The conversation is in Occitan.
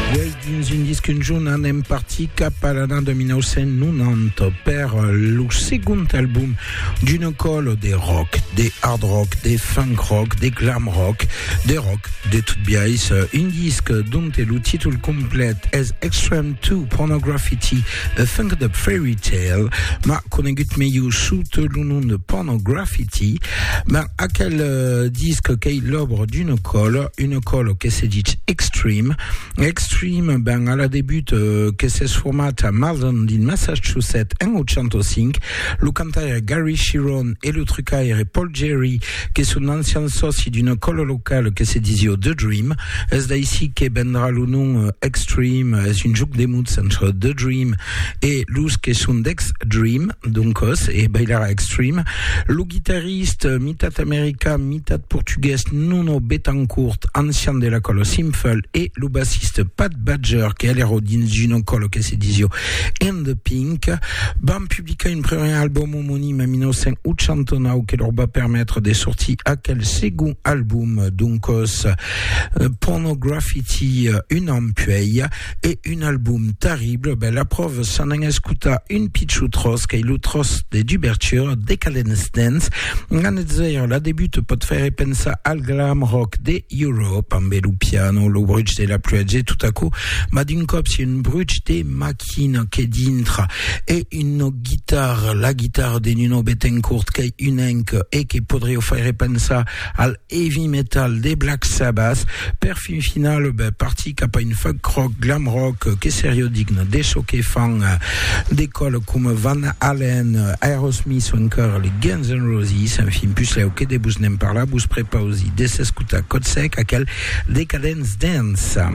Uèi, dins un disc un jorn, anem partir cap a l'ana 1990 per lo segond album d'una còlo de rock, de hard rock, de funk rock, de glam rock, de rock de tot biais, un disc dont lo títol complet es Extreme 2 Pornograffiti, A Funked Up Fairy Tale, ma conegut melhor sot lo nom de Pornograffiti, ma aquel disc qu'ei l'òbra d'una còlo, Una còla que se ditz Extreme. Extreme, ben, a la debut que s'es format a Malden, dins Massachusetts, en 85. Lo cantaire Gary Cherone e lo trucaire Paul Gerry, que son d'ancians sòci d'una còla locala que se disiá The Dream. Es d'aicí que vendrà lo nom Extreme, es un jòc de mots entre The Dream e los que son d'Extreme, doncas, e bailarà Extreme. Lo guitarrista Jornalist, mitat american, mitat portugués, Nuno Betancourt, ancian de la còla Simfel, e lo bassista Pat Badger, que alero dins una còla que se disió In The Pink, van publicar un premier album omonim en 1989 que lor va permetre de sortir aquel segon album, doncòs Pornograffiti un an puèi. E un album terrible, ben la pròva s'an an escotar un pichou tròç qu'ei lo tròç de dubertura, Decadence Dance, an eth zèro la debuta pòt faire pensar al glam rock de Europe, ambé lo piano, lo bruch de la pluèja e tot aquò, mas d'un còp si un bruch de maquina que dintra e una guitarra, la guitarra de Nuno Bettencourt qu'ei un enc e que podrieu faire pensar al heavy metal de Black Sabbath, per fin final partir cap a un funk rock, glam rock que serió digne de çò que fan de còles coma Van Halen, Aerosmith o encara les Guns N' Roses, enfin puslèu que de vos ne'n parlar vos prepausi de s'escotar Codsec, aquel Decadence Dance.